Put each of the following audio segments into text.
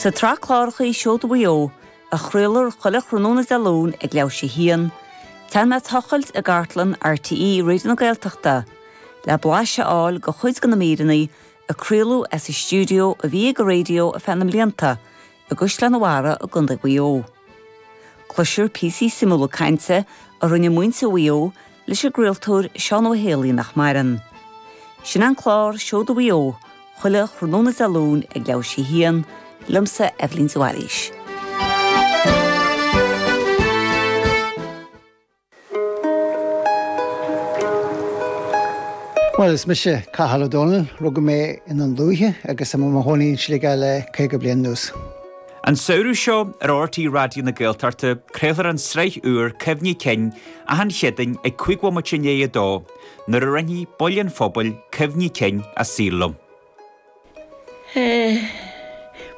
Sa tsraith cláracha Seoda Mhaigh Eo, a chraolfar chuile thráthnóna Dé Luain ag leathuair tar éis a haon, téann mé ag tochailt i gcartlann RTÉ Raidió na Gaeltachta le blaiseadh a fháil de chuid de na míreanna a craoladh as an stiúideo a bhí ag an raidió ar feadh na mblianta i gCaisleán an Bharraigh i gContae Mhaigh Eo. Cloisfear píosaí suimiúla cainte a rinne muintir Mhaigh Eo leis an gcraoltóir Seán Ó hÉalaí nach maireann. Sin an clár Seoda Mhaigh Eo chuile thráthnóna Dé Luain ag leathuair tar éis a haon, liomsa, Eibhlín de Bhailís. Bhuel, is mise Cathal Ó Dónaill. Rugadh mé i nDún Lúiche agus tá mo chónaí i Sligeach le 50 bliain anuas. An samhradh seo ar RTÉ Raidió na Gaeltachta craolfar an sraith úr Cuimhní Cinn achan Chéadaoin ag cúig bhomaite i ndiaidh a dó nuair a roinnfidh baill an phobail cuimhní cinn a saoil liom.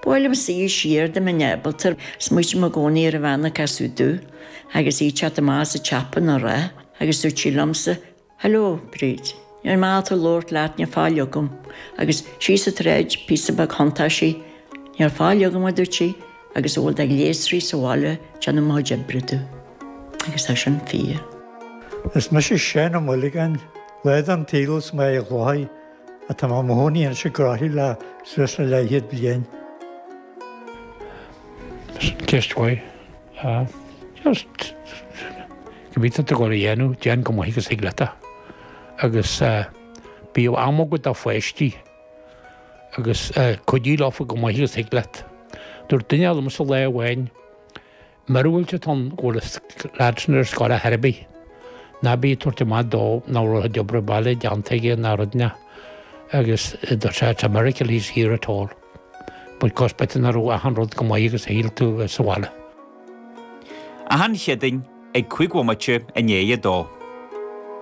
Buailim soir siar do mo Nebaltar, smaoitím i gcónaí ar an bhean a casadh domh, agus í ag teacht amach as an tsiopa á rá, agus dúirt sí liomsa, Hello, Bríd. Níl maith domh labhairt leat, níl faill agam, agus síos an tsráid, píosa beag thiontaigh sí, Níl faill agam, a dúirt sí, agus a bhfuil de ghléasraí sa bhaile ag déanamh mo chuid oibre dom. Agus tá sin fíor. Is mise Seán Ó Maolagáin, lá den tsaol as Mín an Chladaigh Tá mo chónaí anois i gCroithlí le suas le leathchéad bliain. Ceist mhaith. Just cibé atá tú ag dul a dhéanamh, déan chomh maith agus a thig leat é. Agus bíodh am agat do pháistí agus cuidigh leofa chomh maith agus a thig leat. Dúirt duine eile liomsa lá amháin, Míorúilt atá ann go bhfuil an lad sin ar scoil ar chor ar bith. Ná bí ag tabhairt amach dó nach raibh d'obair bhaile déanta aige ná rud ná agus just it's a miracle he's here at all. But cos b'fhéidir nach raibh achan rud chomh maith agus a shíl tú sa bhaile. Achan Chéadaoin ag cúig bhomaite i ndiaidh a dó.